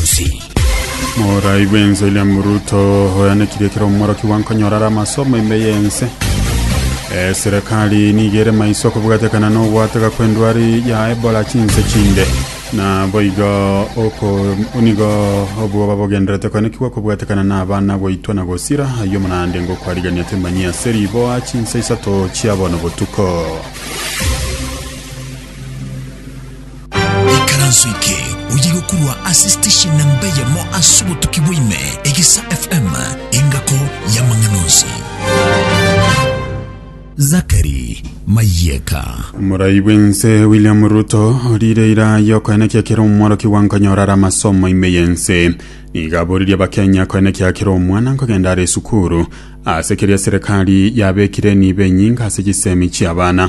Gatusi. Morai bw'ense William Ruto oyanekire ekero omworoki bwankonyora are amasomo ime y'ense. Eh, Serikali nigo ere maiso kobwatekana n'ogwateka kw'endwari ya Ebola chinse chinde. Na boigo oko nigo obwoba bogenderete koenekigwa kobwatekana n'abana goitwa na gosira ayio omonande ngokwarigania temanyi ase riboa chinse isato chia bono botuko. Nyasae. Ikaranso eke oyige korwa ase station namba eyemo ase obotuki bwa ime, Egesa FM, engako y'amang'ana onsi. Zachary Mayeka. Omorai bw'ense William Ruto orire ira y'okoenekia kera omworokiwa nkonyora are amasomo ime y'ense. Nigo aboririe Abakenya koenekia kera omwana nkogenda are esukuru ase keria serikali yabekire niba enyinga ase chisemi chi'abana.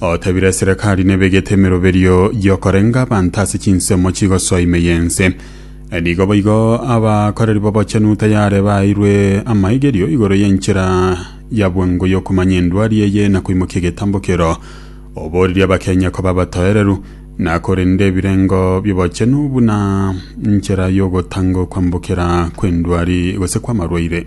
Otebire eserekari nebegete emeroberio y'okorenga abanto ase chinsemo chigosoa ime y'ense. Nigo boigo abakoreri b'obochenu tayare baaeirwe amaigerio igoro y'enchera ya bwango y'okomanya endwari eye na koimokia egetambo keroo. Oboorire Abakenya koba abatoereru na korenda ebirengo bi'obochenu buna nchera y'ogotanga okwambokera kw'endwari gose kw'amarwaire.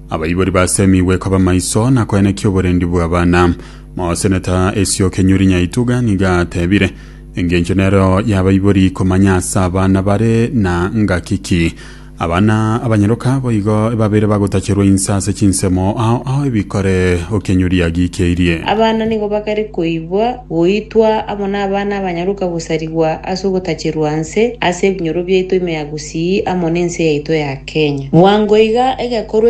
Abaibori basemigwe koba maiso na koenekia oborendi bw'abana. Moseneta esio Kenyuri Nyaituga nigo atebire, Engencho nereo y'abaibori komanya ase abana bare na ngaki ki. Abana abanyaroka boigo ebabeire bagotacherwa inse ase chinsemo ao ao ebikore o Kenyuri agikeirie. Abana nigo bakare koigwa, goitwa amo n'abana abanyaroka gosarigwa ase ogotacherwa nse ase ebinyoro biaito ime ya gusii amo n'ense yaito ya Kenya. Bwango iga egekorwa